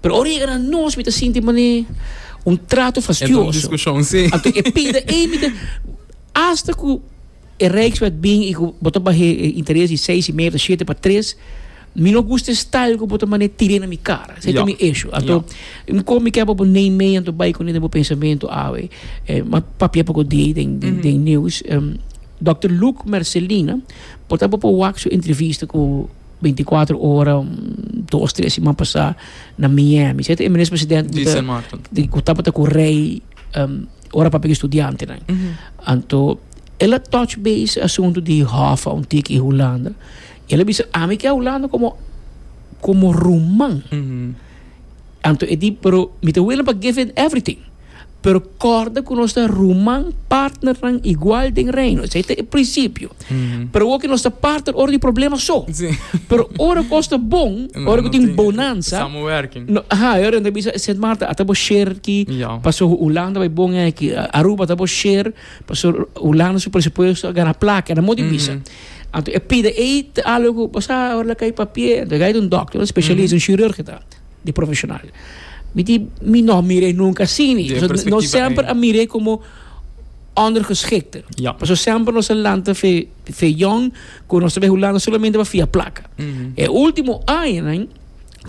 Pero ora yega na nos, mi ta sinti manera un trato fastioso. Anto e pida ey, mi ta, hasta cu e Rijkswet bin y cu bo ta bahe e interes di seis y medio ta shete pa tres, mi no gusta e style cu bo ta mane tire na mi cara. Esey ta mi issue. Anto, mi con mi kep abo neem mee, anto bay cune den bo pensamento awe. M'a papia poco di ey den news. Dòkter Luc Mercelina, por ta bo por wak su entrevista cu 24 ora dos tres siman pasá na Miami seta e minister president ku tabata ku rei ora papia ku e studiantenan anto el a touch base e asuntu di Hoffa un tiki Hulanda i el a bisa ami ke Hulanda komo komo ruman anto e di pero mi ta willing pa give in everything. pero corda cu nos ta ruman, partnernan igual den Reino. Esey ta e principio. Pero hoki nos ta partner ora di problema so. Sí. Pero ora cos ta bon, No, ora cu no tin tin- bonanza, Samenwerking. no, aha, e ora ta bisa Sint Maarten, ata bo share ki, Ja. paso Hulanda bay bon eh ki, A- Aruba ata bo share, paso Hulanda su presupuesto a gana placa, e na modi bisa. Anto e pida ey ta algo cu, bosa ora la cay papia, ento gai ta un doctor, un specialist, un chirurg e ta. di profesional. Mi di, mi no miré nunca así ni. No semper a miré como ondergeschikte. Ja. Paso semper nos a lanta fe, fe jong, con nos ve hulanda solamente pa fia placa. Mm -hmm. E ultimo año,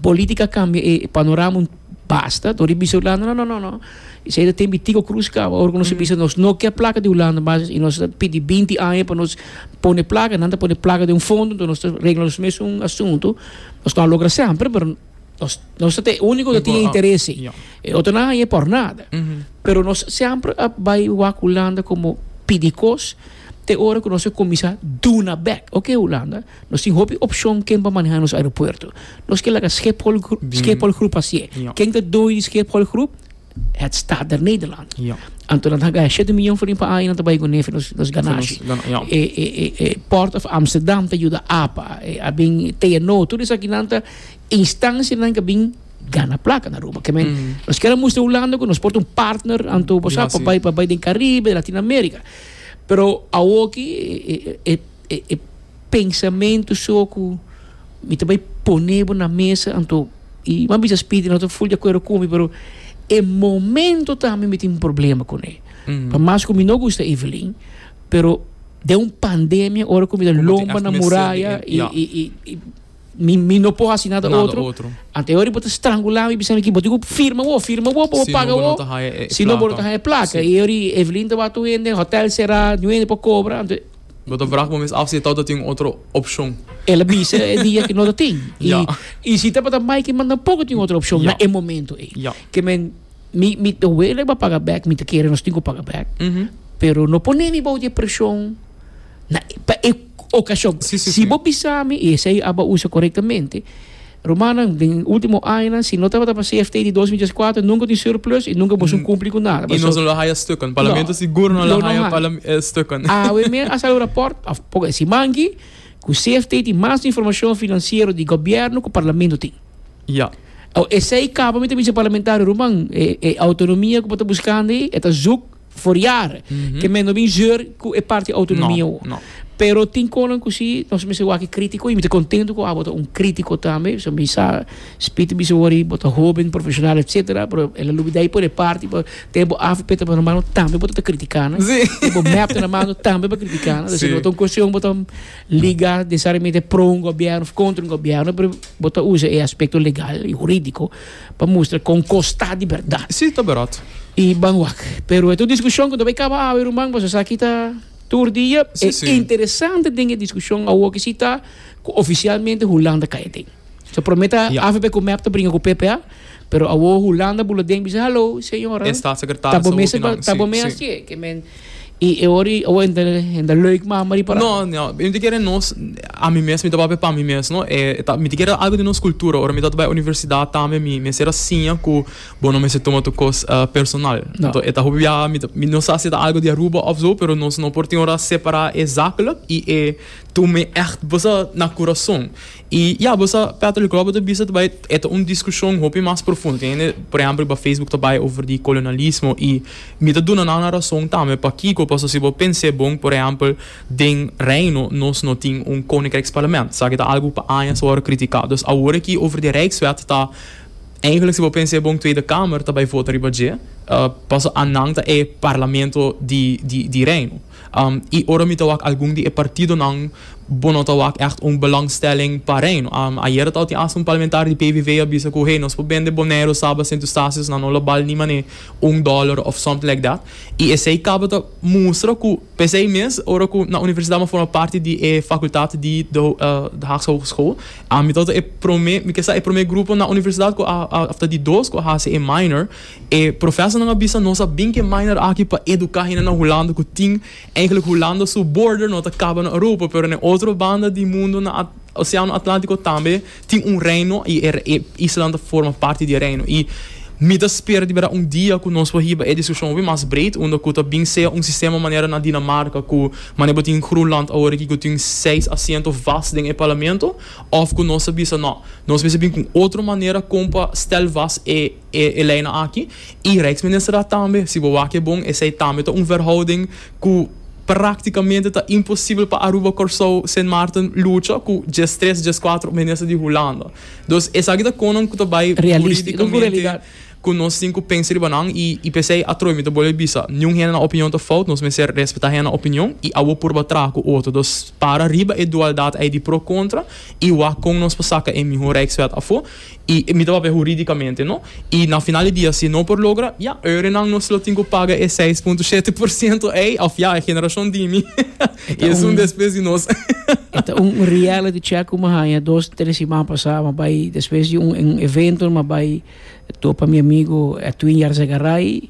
política cambia e panorama basta. Tori bisa hulanda, no, no, no, no. Esei ta tin bitico cruz caba ora cu nos a bisa nos no kier placa di Hulanda basis y nos a pidi binti aña pa nos pone placa y nan ta pone placa den un fondo entonces nos ta regla nos mes un asunto nos no a logra semper pero nos nos ta e unico ta tin interese e otronan aña por nada pero nos semper a bai wak Hulanda como pidi cos te ora cu nos a cuminsa duna bek oke Hulanda. Nos tin hopi opcion ken pa maneha nos aeropuerto. Nos ke laga Schiphol Groep, Schiphol Groep a sie. Ja. Ken ta doño di Schiphol Groep? Het Staat der Nederland. Ja. Anto nan ta hagaya shete miyon for riba aña, nan ta bai ku nefi nos, nos ganashi. Nos gana- ja. E, e, e, e Port of Amsterdam ta yuda apa, e, a bin TNO, tur esaki nan ta instancianan ke bin gana plaka na Aruba. Ke men, nos kier a mustra Hulanda ku nos por ta un partner, anto, bo sa, Ja, pa si. bai, pa bai den Caribe, Latin America. Pero awoki, e, e, e, e. E e pensamentu so ku mi ta bai pone bo na mesa anto i bo a bisa Speedy no ta full di akuerdo ku mi pero e momento tambe mi tin problema ku ne por mas ku mi no gusta Evelyn pero den un pandemia ora ku mi ta lomba na muraya i i i. Mi, mi no por hasi nada otro. Ante hori bo ta strangula mi, bisa mi ki bo tin ku firma bo, firma bo, pa bo paga bo. Si no bo no ta haya e plaka. E hori Evelyn tabata un hende, hotel sera, ni un hende por kobra. Bo ta vraag bo mes af si e tabata tin otro opshon. El a bisa e dia ku no ta tin. I si tabata mai ki man tampoco tin otro opshon na e momento ei. Ke men, mi, mi ta wele pa paga bek, mi ta kere nos tin ku paga bek, pero no pone mi bou di e preshon. Na e, pa e okashon. Sí, sí, sí. Si bo bisa mi, i esei aba usa korektamente, rumannan, den e último añanan, si no tabata pa CFT di dos mil dies kuater, nunka tin surplus i nunka boso kumpli ku nada. I Pasobra, nos no lo haya stukken. Parlamento sigur no lo no, no haya haya. palam, eh, stukken. Awe men a sali un rapòrt, òf poko e siman aki, ku CFT tin mas informashon finansiero di gobièrnu ku Parlamento tin. Ya. Awe, esei kaba mi ta bisa parlamentario ruman, e, e outonomia ku bo ta buskando ei, e ta zùk. Foriar ke men no bin zeur ku e parti autonomia ho. Pero tin konan ku si, nos mester wak e kritiko i mi ta kontentu ku abo ta un kritiko tambe, pasobra mi sa Spiti bisa wòrdu bo ta hoben, profeshonal etsetera, pero el a lubidá i pone e parti pa tene bo afo peta bo na mano tambe bo ta ta kritiká nan, tene bo mèp na mano tambe bo ta kritiká nan, si no ta un kuestion bo ta liga nesesariamente pro un gobierno òf kontra un gobierno, pero bo ta usa e aspekto legal i hurídiko. pa mustra kon kos ta di bèrdat. Sí, ta bèrdat. I ban wak. Pero e ta un diskushon ku no bai kaba awe, ruman, pasobra esaki ta tur dia. Sí, sí. E interesante den e diskushon awoki si ta ku ofisialmente Hulanda kai aden. So promé ta Ya. AVP ku mep ta bringa ku PPA, pero awor Hulanda bula den bisa, hallo, señora. E statssekretaresa ta bo mester hopi nan, ta bo sí, mester sí. hasié ke men Y e ora y awe hende hende leuk mama ri para. No, no, mi ta kere nos, a mi mes, mi ta papia pa mi mes, no. E ta, mi ta kere algo di nos cultura. Ora mi tabata bay universidad tambe mi mester a siña cu bo no mester tuma tur cos personal. No. Enton e ta hopi biaha mi ta, mi no sa si e ta algo di Aruba of zo, pero nos no por tin ora separa e zakelijk y e tur mi echt bosa na curazon. Y ya, bo sa, Patrick Robert a bisa ta bay, e ta un discusion hopi mas profundo. Tin hende, por ehempel, riba Facebook ta bay over di colonialismo y mi ta duna nan razon tambe. Pakico? Pasobra si bo pens'é bon, por ehempel, den Reino nos no tin un Koninkrijksparlament, sa ki ta algo cu pa aña a wòrdu critica. Dus awor aki over di Rijkswet ta, eigenlijk si bo pens'é bon, Tweede Kamer ta bay vota riba dje, paso anan ta e Parlamento di, di, di Reino. I ora mi ta wak algun di e partidonan, bo no ta wak ègt un belòngstelling pa Reino. Ayera tabata tin asta un parlamentario di PVV a bisa ku, Hey, nos por bende Boneiru, Saba, Sint Eustatius nan, no lo bal ni manera un dòler òf something like that. I esei tabata mustra ku p'esei mes ora ku na universidat mi a forma parti di e fakultat di de de Haagse Hogeschool, mi tabata e promé, mi ke sa e promé grupo na universidat ku a afta di dos ku a hasi e minor. E profesornan a bisa, Nos a bin ke Minor aki pa eduká hende na Hulanda ku tin enklik Hulanda su border no ta kaba na Europa, pero na e otro banda di mundu, na Oseano Atlantiko tambe tin un reino i e islanan ta forma parti di e reino. I mi ta spera di bera un dia ku nos por hiba e diskushon hopi mas bred, unda ku ta bin sea un sistema manera na Dinamarka ku manera bo tin Groenland awor aki ku tin seis asiento vast den e parlamento òf ku nos ta bisa, Nò, nos mester bin ku un otro manera kon pa stèl vast e e leynan aki i Rijksminister a tambe, si bo wak e bon, esei tambe ta un verhouding ku praktikamente ta imposibel pa Aruba, Kòrsou, Sint Maarten lucha ku djes tres, djes kuater minister di Hulanda. Dus esaki ta konan ku ta bai huridikamente ku nos tin ku pensa riba nan i i p'esei atroy mi ta bolbe bisa, niun hende nan opinion ta fout, nos mester respetá hende nan opinion i abo purba traha ku otro. Dus para riba e dualdat ei di pro-kontra i wak kon nos por saka e mihó Rijkswet afó. I mi ta papia huridicamente, no. I na final di dia si no por logra, ya, oerenan nos lo tin cu paga e seis punto shete por ciento ey, of ya, e generacion di mi, y es un despues di nos. E ta un reality check cu mi a haña dos, tres siman pasa. Mi a bay, despues di un evento, mi a bay topa mi amigo Edwin Jarza Garay.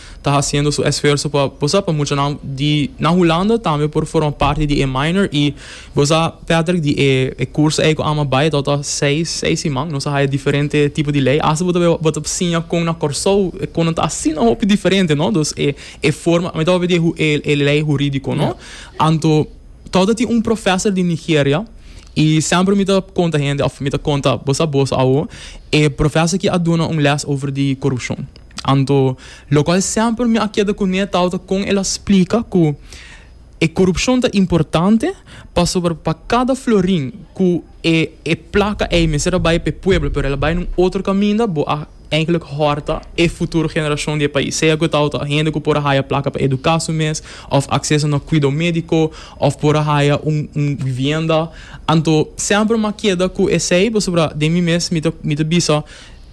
ta hasiendo su esfuerso pa bosa pa muchanan di na Hulanda tambe por forma parti di e minor y bosa Patrick di e curso ey cu ama bay a tabata seis seis siman nos a haya diferente tipo di ley hasta bo ta bo ta siña con na Corsou e conan ta asina hopi diferente no dos e e forma mi tabata di e e ley huridico no anto tabata tin un professor di Nigeria y semper mi ta conta hende of mi ta conta bosa bos awo e professor aki a duna un les over di corupcion. Anto, lokual semper mi a keda kuné tawata kon el a splika ku e korupshon ta importante, pasobra pa kada florin ku e e plaka ei mester a bai pa e pueblo pero el a bai na un otro kaminda, bo a einklik hòrta e futuro generashon di e pais, sea ku tawata hende ku por a haya plaka pa eduká su mes òf akseso na kuido médiko òf por a haya un un bibienda. Anto, semper mi a keda ku esei pasobra den mi mes mi ta mi ta bisa.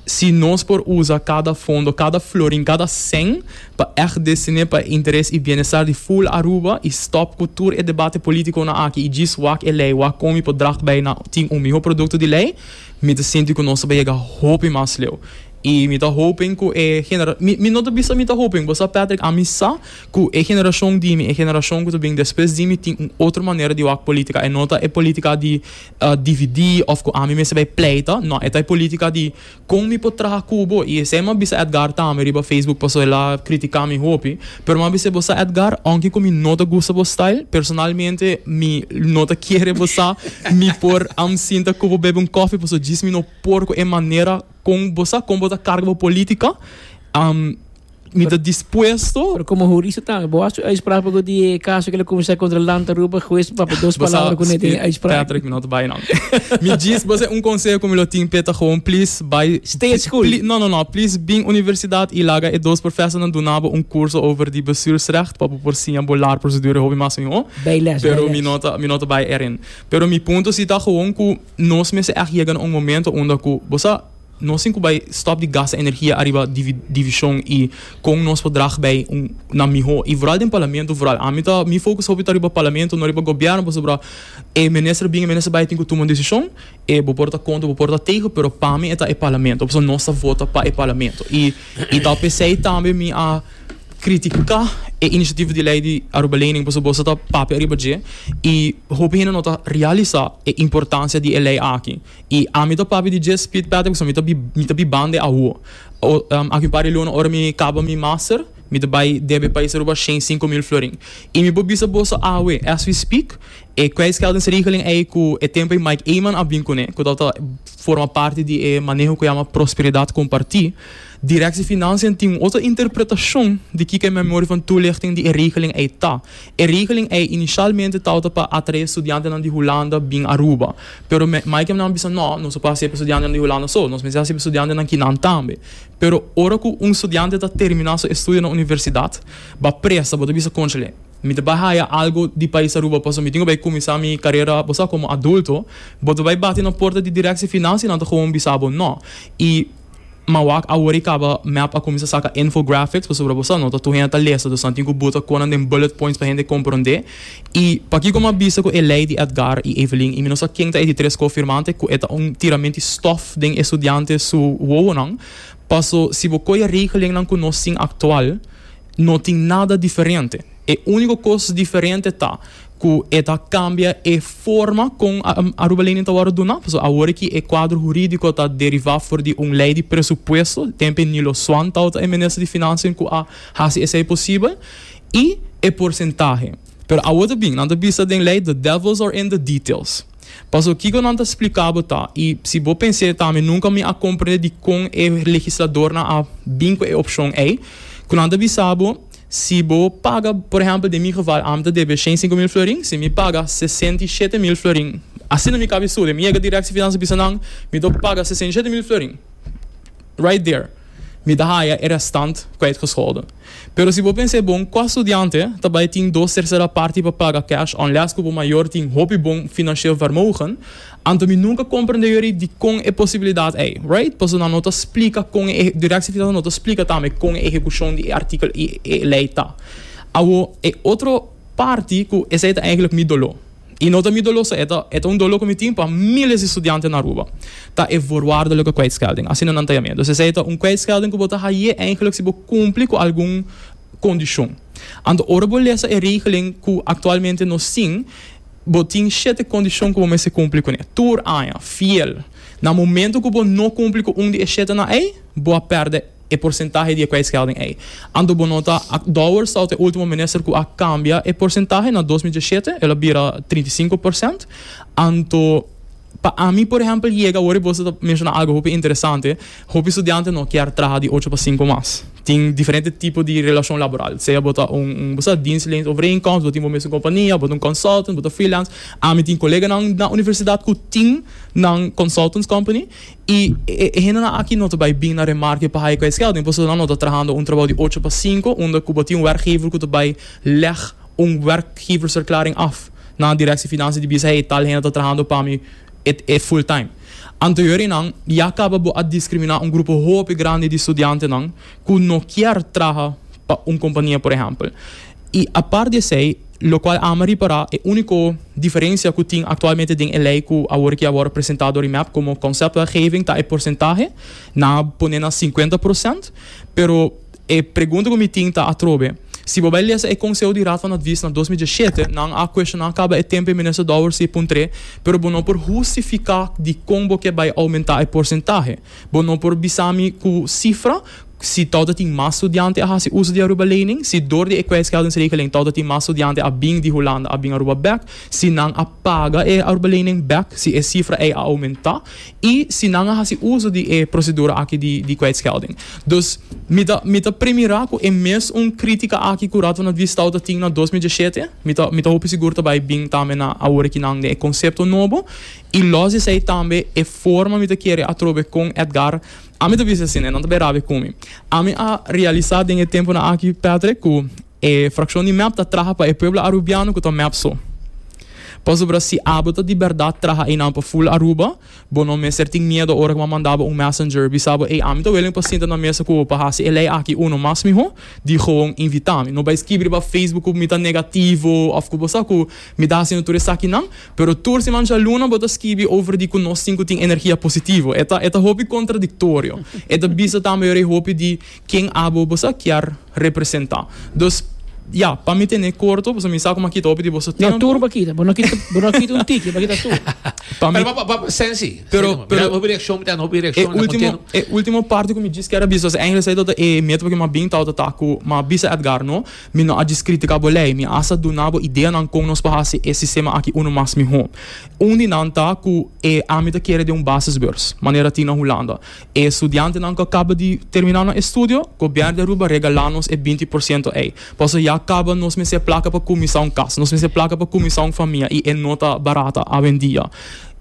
Si nos por usa kada fondo, kada florin, kada sen pa ègt destiné pa e interes i bienestar di ful Aruba i stòp ku tur e debate politikonan aki i djis wak e lei, wak kon mi por drag bai na tin un mihó produkto di lei, mi ta sinti ku nos ta bai yega hopi mas leu. I mi ta hopen ku e genera, mi, mi no ta bisa mi ta hopen, bo sa Patrick, ami sa ku e generashon di mi, e generashon ku ta bin despues di mi tin un otro manera di wak politika, e no ta e politika di. dividí òf ku ami mester bai pleita. Nò, e ta e polítika di kon mi por traha ku bo. I esei mi a bisa Edgar tambe riba Facebook pasobra el a kritiká mi hopi. Pero mi a bis'é, bo sa Edgar, ounke ku mi no ta gusta bo style, personalmente mi no ta kere bo sa mi por amsinta ku bo bebe un kòfi pasobra djis mi no por ku e manera kon bo sa kon bo ta karga bo polítika. Mi ta dispuesto. Pero como jurista tambe bo a su uitspraak pago di e caso que lo comenzar contra Land Aruba juez pa papel dos palabra con ete uitspraak. Patrick mi no ta bay no. Mi djis boso e un conseho cu mi lo tin p'e ta gewoon please bay. Stay at school. No no no please bin universidad y laga e dos professornan duna bo un curso over di bestuursrecht pa bo por siña bo lar procedure e hopi mas miho. Bay les bay les. Pero mi no ta bay erin. Pero mi punto si ta gewoon cu nos mester echt yega na un momento unda cu bo sa. Nos tin cu bay stop di gasta energia ariba division y con nos por drag bay na miho. Y vooral den Parlamento vooral. Ami ta, mi focus hopi ta riba Parlamento, no riba Gobierno pasobra e minister a bini, e minister a bay tin cu tuma un decision. E bo por ta contra, bo por ta tegen, pero pa mi e ta e Parlamento pasobra nos ta vota pa e Parlamento. Y y ta pesey tambe mi a critica e iniciativo di ley di Aruba Lening pasobra boso ta papia ariba dje y hopi hende no ta realisa e importancia di e ley aki. I ami ta papia di dje spit pèt because mi ta bi mi ta bi bande awo. Aki un par di luna ora mi kaba mi master mi ta bai debe pais aruba shen sinku mil florin. I mi por bisa boso awe as we speak e kwijtscheldingsregeling ei ku e tempo ei Mike Eman a bin kuné ku tabata forma parti di e maneho ku yama prosperidad kompartí, Directie Financiën tin un otro interpretacion di kiko e memori van toelichting di e regeling ei ta. E regeling ei inicialmente tawata pa atrae studiantenan di Hulanda bin Aruba. Pero me Maikennan bisa no, nos no por hasi e pa studiantenan di Hulanda so, nos mester hasi e pa studiantenan kinan tambe. Pero ora ku un studiante ta termina su estudio na universidad, ba presa, bo ta bisa, Conchale, mi ta bai haya algo di pais Aruba pasobra mi tin ku bai kuminsá mi karera, bo sa, komo adulto. Bo ta bai bati na porta di Directie Financiënan ta gewoon bisa bo no. I. Ma wak awor i kaba mep a kuminsá saka infographics pasobra bo sa no ta tur hende ta lesa, dus nan tin ku buta konan den bullet points pa hende komprondé. I pakiko mi a bisa ku e lei di Edgar i Evelyn, i mi no sa ken ta e di tres kofirmante, ku e ta un tiramenti stòf den e studiante su wowonan, paso si bo koi e regelennan ku nos tin aktual no tin nada diferente. E úniko kos diferente ta ku e ta kambia e forma kon Aruba Lening ta wòrdu duna, pasobra awor ki e kuadro hurídiko ta derivá for di un lei di presupuesto, tempe ni lo Swan Tau ta e minister di Finansia ku a hasi esei posibel, i e porsentahe. Pero awor ta bin, nan ta bisa den lei, the devils are in the details. Pasobra kiko nan ta spliká bo ta, i si bo pens'é tambe nunka mi a komprendé dikon e legisladornan a bin ku e opshon ei, ku nan ta bisa bo, Si bo paga, por ehempel den mi geval, ami ta debe shen sinku mil florin, si mi paga sesenta i shete mil florin, asina mi kaba e storia, mi yega dirèk si finansa bisa nan, mi tok paga sesenta i shete mil florin, right there mi ta haya e restant kwijtgescholden. Pero si bo pensa e bon, kua studiante ta bai tin dos tercera parti pa paga cash, unless ku bo mayor tin hopi bon financieel vermogen, Anto mi nunca comprende yori dicon e posibilidad ey, right? Paso nan no ta splica con e, di Rex Digital no ta splica tambe con e ehecucion di e artikel y e ley ta. Awo e otro parti cu esey ta eigenlijk mi dolo. Y no ta mi dolo so, e ta, e ta un dolo cu mi tin pa miles di studianten na Aruba. Ta e voorwaardelijke kwijtschelding, asina nan ta yam'e. Dus esey ta un kwijtschelding cu bo ta haye eigenlijk si bo cumpli cu algun condicion. Anto ora bo lesa e regeling cu actualmente nos tin, Bo tin shete kondishon ku bo mester kumpli kuné tur aña, fiel. Na momentu ku bo no kumpli ku un di e shetenan ei, bo a pèrdè e porsentahe di e kwijtschelding ei. Anto bo no ta akdouwer stout e último minister ku a kambia e porsentahe. Na dos mi dieshete el a bira trinta i sinku porsènt. Anto. Pa ami por ehempel yega awor y boso ta menciona algo hopi interesante, hopi studiante no kier traha di ocho pa sinku mas. Tin diferente tipo di relacion laboral, sea bo ta un un bosa dienstleens overeenkomst, bo tin bo mesun compania, bo ta un consultant, bo ta freelance. Ami tin coleganan na universidad cu tin nan consultants company y e hendenan aki no ta bay bin na remarke pa hae cu e schelding, pasobra nan no ta trahando un trabajo di ocho pa sinku unda cu bo tin un werkgever cu ta bay leg un werkgeversverklaring af. Na Directie Financiën di Bisa e tal hende ta trahando pa mi e full time. Anterior di nan ya caba bo a discrimina un grupo hopi grandi di studiantenan cu no kier traha pa un compania por ehempel. Y apart di esey, locual ama ripara e unico diferencia cu tin actualmente den e ley cu awor ki a wor presenta door IMEP como conceptwetgeving ta e porcentahe, nan a pone na cincuenta procent, pero. E pregunta ku mi tin ta atrobe. Si bo bai lesa e konseho di Raad van Advies na dos mil dieshete, nan a kueshoná kaba e tempu e Minister Douwer si e puntr'é, pero bo no por hustifiká dikon bo ke bai oumentá e porsentahe. Bo no por bisa mi ku sifra, si tou ta tin mas studiante a hasi uso di Aruba Lening, si dor di e kwijtscheldingsregeling tou ta tin mas studiante a bin di Hulanda a bin Aruba bèk, si nan a paga e Aruba Lening bèk, si e sifra ei a oumentá. I si nan a hasi uso di e prosedura aki di di kwijtschelding. Dus mi ta mi ta premirá ku e mes un krítika aki ku Raad van Adviesstau ta tin na dos mil diesshete, mi ta mi ta hopi sigur ta bai bin tambe na awor aki nan den e konsepto nobo. I lòs di esei tambe e forma mi ta kere atrobe kon Edgard ami ta bisa asin e nan ta bai rabia ku mi. Ami a realisá den e tempunan aki, Patrick, ku E frakshon di mep ta traha pa e pueblo arubiano ku ta mep so. Pasobra si abo ta di bèrdat traha einan pa Full Aruba, bo no mester tin miedo ora ku bo a manda bo un messenger bisa bo, Ey, ami ta wèlimi pa sinta na mesa ku bo pa hasi e lei aki uno mas mihó di gewoon invitá mi. No bai skibri riba Facebook ku mi ta negativo òf ku bo sa ku mi ta hasindu tur esakinan. Pero tur si mancha luna bo ta skibi over di ku nos tin ku tin energia positivo. E ta, e ta hopi kontradiktorio. E ta bisa tambe ora e hopi di Ken abo boso a kier representa? Dus, ya, pa mi tene korto, pasobra mi sa ku mi a kita hopi di boso tempo. No, tur bo a kita. Bo no kita, bo no a kita un tiki, bo a kita tur. Pa mi. Pero pa, pa, Sensi, Pero, Sensi, pero. Mira, hopi reakshon mi ta dando, hopi reakshon mi ta kontinua. E ultimo, e ultimo parti ku mi djis keda bisa, pasobra Engel sa e ta e meta pa ke mi a bin tabata ta ku mi a bisa Edgar, no, mi no a djis kritika bo lei, mi hasta duna bo ideanan kon nos por hasi e sistema aki unu mas mihó. Un di nan ta ku e ami ta kere den un basisbeurs, manera tin na Hulanda. E studiantenan ku a kaba di terminá nan estudio, gobièrnu di Aruba regalá nos e binti por siento ei. Pasobra ya a kaba nos mester plaka pa kuminsá un kas, nos mester plaka pa kuminsá un famia i e no ta barata awendia.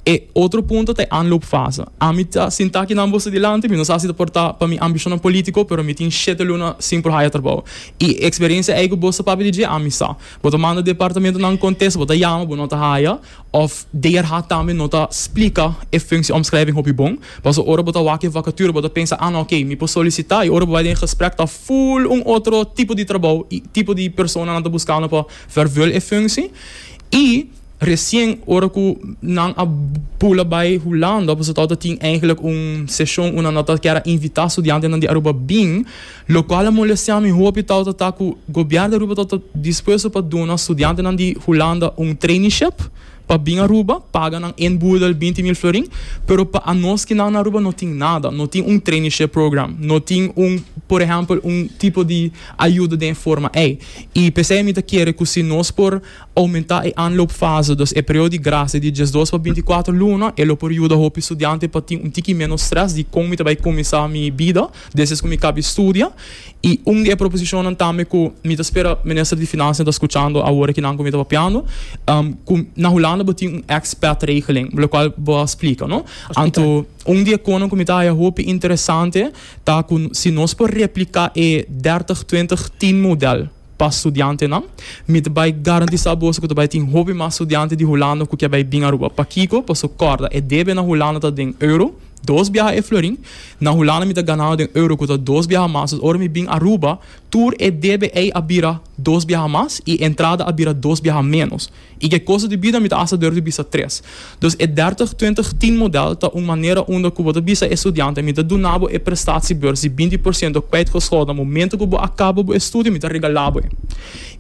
E otro punto ta e aanloopfase. Ami ta sintá aki nan boso dilanti, mi no sa si ta por ta pa mi ambishonnan polítiko, pero mi tin shete luna sin por haya trabou. I e eksperensia ei ku boso papia di dje, ami sa. Bo ta manda departamentonan kontes, bo ta yama, bo no ta haya. Òf DRH tambe no ta splika e funsie-omschrijving hopi bon. Paso ora bo ta wak e vakature bo ta pensa, ah, oké, mi por solisitá, i ora bo bai den e gesprek ta ful un otro tipo di trabou i tipo di persona nan ta buskando pa vervul e funsie. I resien ora ku nan a bula bai Hulanda, paso tabata tin, eigelijk, un seshon ku nan a ta kier a invitá studiantenan di Aruba bin, Locual a molestia mi hopi tawata ta cu Gobierno di Aruba tawata dispuesto pa duna studiantenan di Hulanda un traineeship pa bin Aruba, paga nan en boedel binti mil florin, pero pa anos ki nan na Aruba no tin nada, no tin un traineeship program, no tin un, por ehempel, un tipo di ayuda den e forma ey. Y p'esey mi ta kere cu si nos por aumenta e aanloopfase, dus e periodo di gracia di diesdos pa binticuater luna, e lo por yuda hopi studiante pa tin un tiki menos stress di con mi ta bay cuminsa mi bida, Despues ku mi kaba e studia i un di e proposishonnan tambe ku mi ta spera Minister di Finansianan ta skuchando awor aki nan ku mi ta papiando, ku na Hulanda bo tin un expat regeling, lokual bo a splika, no? Anto un di e konan ku mi ta haya hopi interesante ta ku si nos por repliká e dèrtig twintig tien modèl, Pa studiantenan, mi ta bai garantisá boso ku ta bai tin hopi mas studiante di Hulanda ku ke bai bin Aruba. Pakiko? Paso kòrda, e debe na Hulanda ta den euro, dos biaha e florin. Na Hulanda mi ta ganando den euro ku ta dos biaha mas. Dus ora mi bin Aruba, tur e debe ei a bira dos biaha mas i entrada a bira dos biaha ménos. I ke kosa di bida mi ta hasi dor di bisa tres. Dus e dertig twintig tin model ta un manera unda ku bo ta bisa e studianten, Mi ta duna bo e prestatiebeurs di binti por siento kwijtgescholden na momento ku bo a kaba bo e studio, mi ta regala bo e.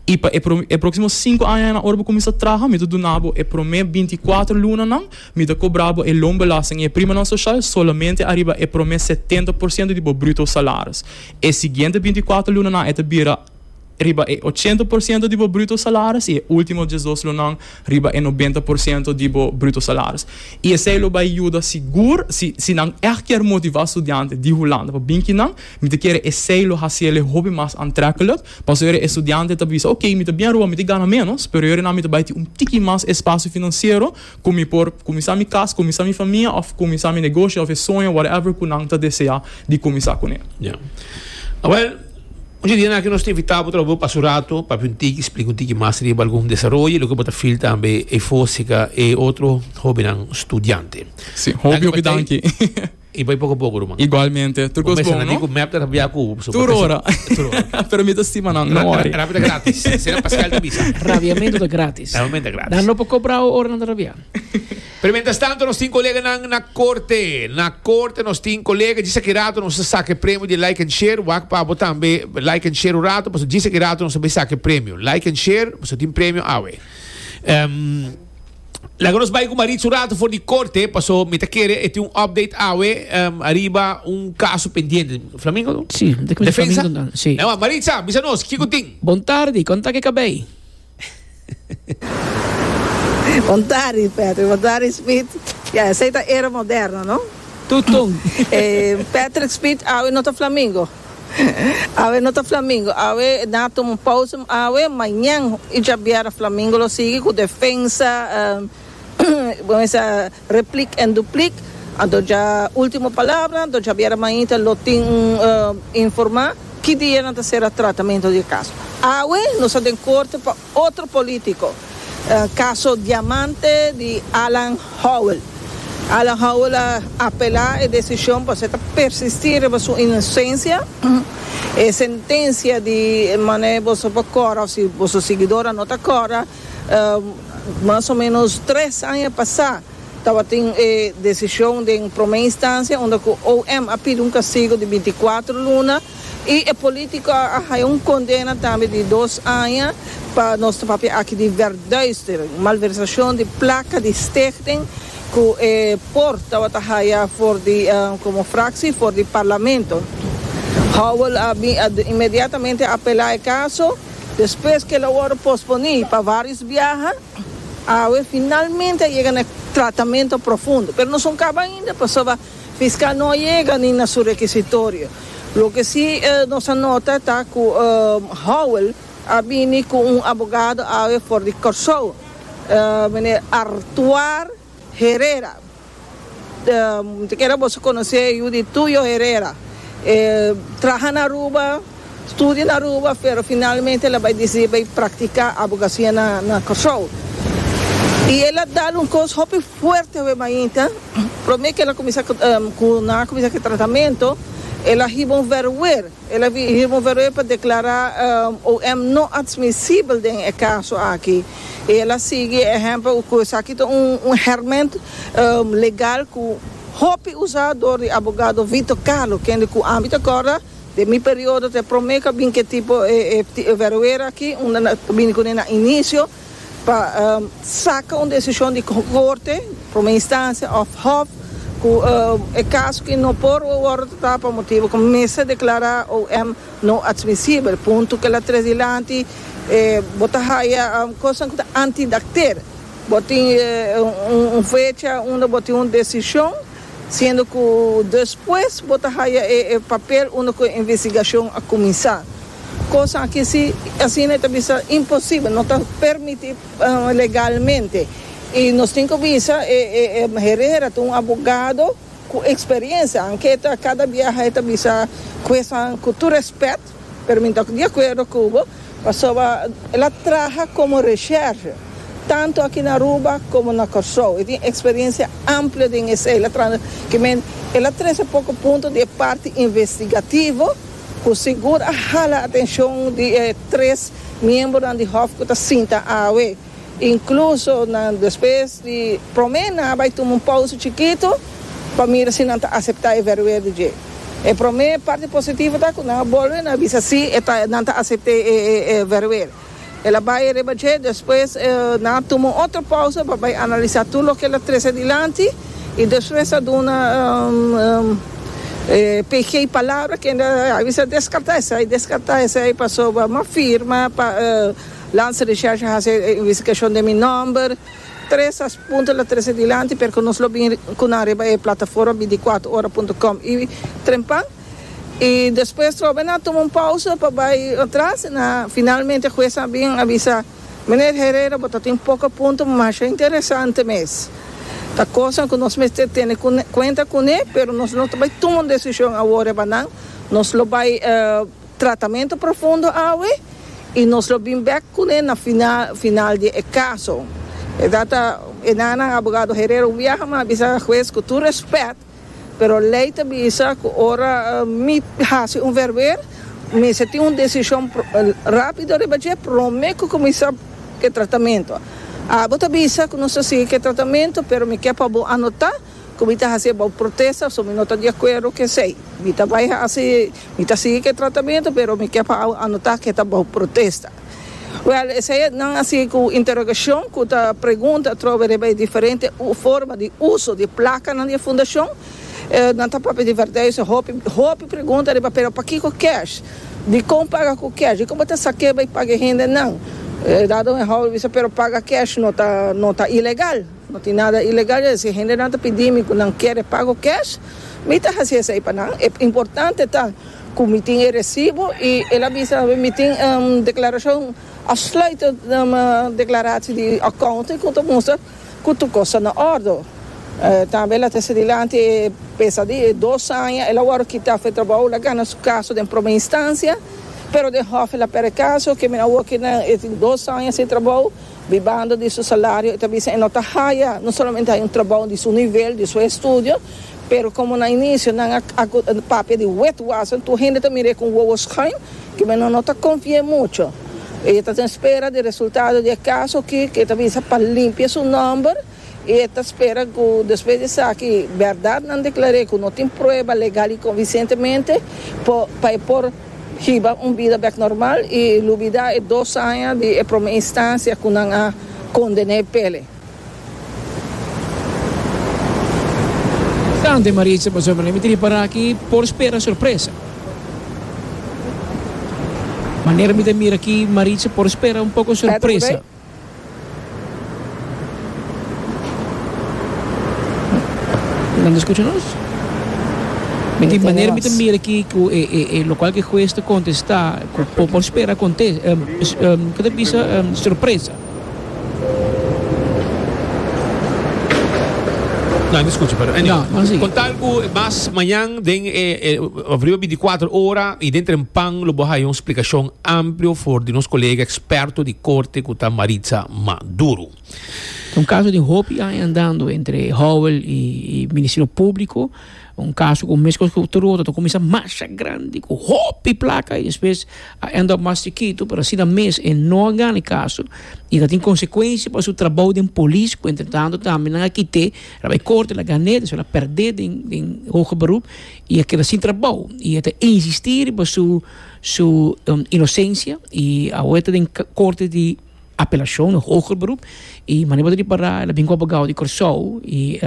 I pa e próksimo sinku aña na ora bo kuminsá traha, mi ta duna bo e promé binti kuater lunanan, mi ta kobra bo e loonbelasting i e primanan sosial solamente ariba e promé setenta por siento di bo bruto salaris. E siguiente binti kuater lunanan e ta bira. riba e ochenta por siento di bo bruto salaris i e ultimo diesdos lonan riba e nobenta por siento di bo bruto salaris. I esei lo bai yuda sigur si si nan ègt kier motivá studiante di Hulanda pa bin kinan, mi ta kere esei lo hasi el e hopi mas antrèkkelek, paso yore e studiante ta bisa, Oké, mi ta biaruba, mi ta gana ménos, pero yorenan mi ta bai tin un tiki mas e spasio finansiero ku mi por kuminsá mi kas, kuminsá mi famia òf kuminsá mi negoshi òf e soño whatever ku nan ta deseá di kuminsá kuné. Ya. Awèl, ochi dia na aki nos ta invitá bo trabou pasa un ratu, papia un tiki, splika un tiki mas riba algun desaroyo i loke bo ta feel tambe e fósika e otro hóbennan studiante. Sí, hopi hopi danki. I bai poko poko ruman. Igualmente, tur cos bon no. Tur ora. Pero mi ta stima nan, no worry. Rabia ta gratis. Sera Pascal ta bisa. Rabiamento ta gratis. Rabiamento ta gratis. Nan lo por cobrao ora nan ta rabia. Pero mientras tanto nos tin colega nan na corte. Na corte nos tin colega. Djis aki rato nos a saca e premio di like and share. Wak pa abo tambe like and share un rato. Paso djis aki rato nos a bai saca e premio. Like and share. Nos a tin premio awe. Um. Laga nos bai ku Maritsu ratu for di korte paso mi ta kere e tin un update awe ariba un kaso pendiente. Flamingo no? Si, mi ta kere Defensa? Flamingo nan, si. Ewa, Maritsa, bisa nos, kiko tin? Bon tardi, kon ta ke kabei? Bon tardi, Patrick. Bon tardi, Smith. Ya, esei ta era moderno, no? Tutong. E Patrick Smith awe no ta Flamingo. Awe no ta Flamingo, awe nan a tuma un pausa, awe mañan y djabiera Flamingo lo sigui cu defensa replik en duplik, anto dja ultimo palabra, anto djabiera mañita lo tin un informa ki dia nan ta cera tratamento di e caso. Awe nos ta den corte pa Otro politico, caso Diamante di Alan Howell. Alan Howell a apela e decision pasobra e ta persisti riba su inocencia. E sentencia di manera boso por cora o si boso siguidoran no ta cora, mas o menos tres aña pasa tabatin e decision den prome instancia unda cu OM a pidi un castigo di binti cuatro luna. Y e politico a haya un condena tambe di dos aña pa nos ta papia aki di verduistering, malversacion di placa di stichting cu e por tabata haya for di como fractie for di Parlamento. Howell a bin a inmediatamente apela e caso, despues que el a worde posponi pa varios biaha, awe finalmente a yega na e tratamento profundo, pero nos no caba ainda pasoba Fiscal no a yega ni na su rekisitorio. Loke si nos a nota ta ku Howell a bini ku un abogado awe for di Kòrsou, meneer Artuar Herrera. Bo ta kere boso konosé yu di Tuyo Herrera. E traha na Aruba. Studio na Aruba pero finalmente el a bai dicidi bai practica abogacia na Corsou y el a dal un cos hopi fuerte awe mainta, prome que el a cuminsa cu nan a cuminsa cu e tratamento el a hiba un verwer, el a hiba un verwer pa declara OM no adsmisible den e caso aki y el a sigui e ehemplo cu esaki ta un herment legal cu hopi usa door di abogado Vito Carlo kende cu ami ta corda Den mi periodo ta e prome cu a bin ke tipo e veroera aki, unda nan ta bini cune nan inicio pa saca un decision di Corte, prome instancia of Hof, cu e caso aki no por worde tratá pa motibo cu mester declará OM no admisibel. Punto kila tres dilanti bo ta haya cosnan cu ta antidacter. Bo tin un fecha unda bo tin un decision. Siendo cu despues bo ta haya e papel unda cu e investigacion a cuminsa. Cos aki si, asina e ta bisa, imposible, no ta permiti legalmente. Y nos tin cu bisa e Herrera ta un abogado cu experiencia, aunke e ta cada biaha e ta bisa, Jueznan, cu tur respet, Pero mi ta di akuerdo ku bo pasobra el a traha komo resherge tantu aki na Aruba komo na Kòrsou. E tin eksperensia amplio den esei. Ki men el a trese poko punto di e parti investigativo ku sigur a hala atenshon di e tres miembronan di Hòf ku ta sinta awe. Incluso nan despues di prome nan a bai tuma un pausa chikito pa mira si nan ta acepta e verwedo dje. E prome parti positivo ta cu nan a bolbe nan a bisa si e ta nan ta acepta e verwedo. El a bai riba dje, despues nan a tuma un otro pausa pa bai analisa tur loke el a trece dilanti y despues a duna e pg palabra kende a bisa descarta esey, descarta esey pasobra a firma pa. Lansa Recherche a hasi e investigashon den mi nòmber, tres a punto la trese dilanti, pero ku nos lo bin ku nan riba e plataforma bintikwatro ora punto com i trempan. I despues trobe nan a tuma un pausa pa bai atras, na finalmente hues a bin a bisa, Meneer Herrera, bo ta tin poko punto masha interesante mes. Ta kosnan ku nos mester tene kuenta kuné, pero nos lo ta bai tuma un desishon awor riba nan, nos lo bai. Tratamentu profundo awe i nos lo bin bek kune na final final di e kaso. E ta ta e nannan abogado Herero Wiaga mi a bisa hues ku tur respet pero lei ta bisa ku ora mi hasi un verweer mester tin un desishon rápido riba dje promé ku kuminsá e tratamentu. Abo ta bisa ku nos ta sigui ku e tratamentu pero mi ke pa bo anotá. Cu mi ta haci about protesta so mi no ta di acuerdo cu esey. Mi ta bay haci, mi ta sigui cu e tratamento pero mi kier pa awe anota cu e ta about protesta. Well, esey e nan haci cu interrogacion cu ta pregunta atrobe riba e diferente forma di uso di placanan di e fundacion. Nan ta papia di verdad yo sa hopi, hopi pregunta riba pero pakico cash? Dicon paga cu cash? Dicon bo ta saqu'e bay paga e hendenan? Dado mi a hopi bisa pero paga cash no ta, no ta ilegal. No tin nada ilegal ey. Si hendenan ta pidi mi cu nan kier e pago cash, mi ta haci esey pa nan. E importante ta cu mi tin e recibo y el a bisa awe mi tin declaracion, afsluitend declaratie di accounting cu ta mustra cu tur cos na ordo. Tambe laten sa dilanti e pesadi, e dos aña, el a worde kita af e trabao, el a gana su caso den prome instancia, pero den hof el a perde caso, kende mi na work kidnan e tin dos aña sin trabao. Di banda di su salario e ta bisa e no ta haya, no solamente haya un trabao di su nivel, di su estudio, pero como na inicio nan a papia di wet wassen, tur hende ta mir'e con wowo schuin, ke men no no ta confi'e mucho. E ta den spera di resultado di e caso aki, ke ta bisa pa limpia su nomber. I e ta spera ku despues di esaki bèrdatnan deklar'é ku no tin prueba legal i konvinsentemente por pa e por hiba un bida bèk normal i lubidá e dos aña di e promé instansia ku nan a konden'é p'e. Kante Maritza pasa pa mi tripara aki por spera sorpresa. Manera mi ta mira aki Maritza por spera un poko sorpresa. Nan ta scucha nos? Mi tin manera mi ta mira aki cu e e e locual cu e huez ta contesta cu por por spera conte cu ta bisa sorpresa. Nan ta scucha pero anyway. No, nan sigui. Con tal cu mas mañan den e e of riba binti cuatro ora y den Trempan lo bo haya un splicacion amplio for di nos colega experto di corte cu ta Maritza Maduro. Ta un caso di hopi aña andando entre Howell y Ministerio Publico, un caso cu mescos cu Toronto ta cuminsa masha grandi cu hopi placa y despues a end up mas chikito pero asina mes e no a gana e caso y ta tin consecuencia pa su trabao den polis cu entretanto tambe nan a kite a bay corte el a gane despues el a perde den hoge beroep y a keda sin trabao y e ta insisti riba su su inosencia y awe ta den corte di apelacion o hoger beroep y manera bo ta repara el a bin cu abogado di Corsou y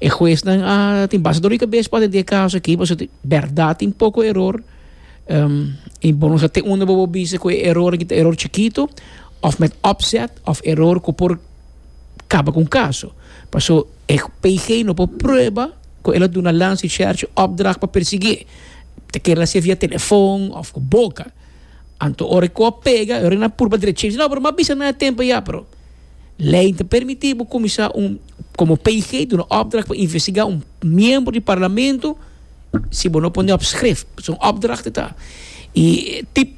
e huesnan a tin basta doli cabes pa atende e caso aki pasobra tin berdad tin poco error y bo no sa te unda bo bisa cu e error aki ta error chikito of met opzet of error cu por kaba ku un kaso. Paso e PG no por prueba ku el a duna Lancy Schertje opdracht pa persiguié. Ta kere el a hasié via telefon òf ku boka. Anto ora e kò a pega, e ora nan a purba dreché, no, pero mi a bisa nan a tempu ya. Pero lei no ta permití bo kuminsá un, komo PG duna opdracht pa investigá un miembro di parlamento si bo no pone op skrif. Paso un opdracht e ta. I tip,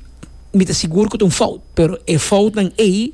mi ta sigur ku ta un fout, pero e foutnan ei.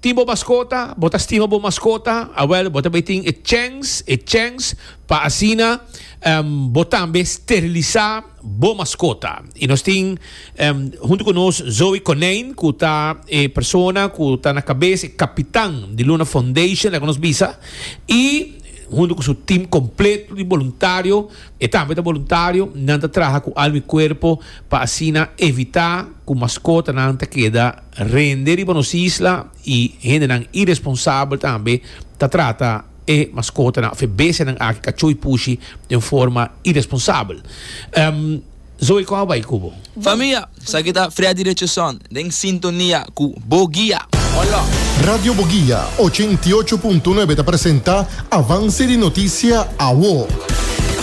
Tin bo maskota? Bo ta stima bo maskota? Awèl, bo ta bay tin e chèns, e chèns pa asina bo tambe sterilisá bo maskota. I nos tin huntu ku nos Zoe Konijn, ku ta e persona ku ta na kabes, e kapitan di Luna Foundation, laga nos bisa. I huntu ku su tim kompleto di boluntario, e tambe ta boluntario, nan ta traha ku alma i kuerpo pa asina evitá ku maskotanan ta keda. Rende riba nos isla y hendenan iresponsabel tambe ta trata e mascotanan of e bestianan aki, cachó y pushi, den forma iresponsabel. Zoe, con a bai cu bo? Famia, esaki ta Freddy Richardson den sintonia cu Bo Guia. Hola! Radio Bo Guia ochenta i ocho punto nuebe ta presenta Avance di Noticia, Awo.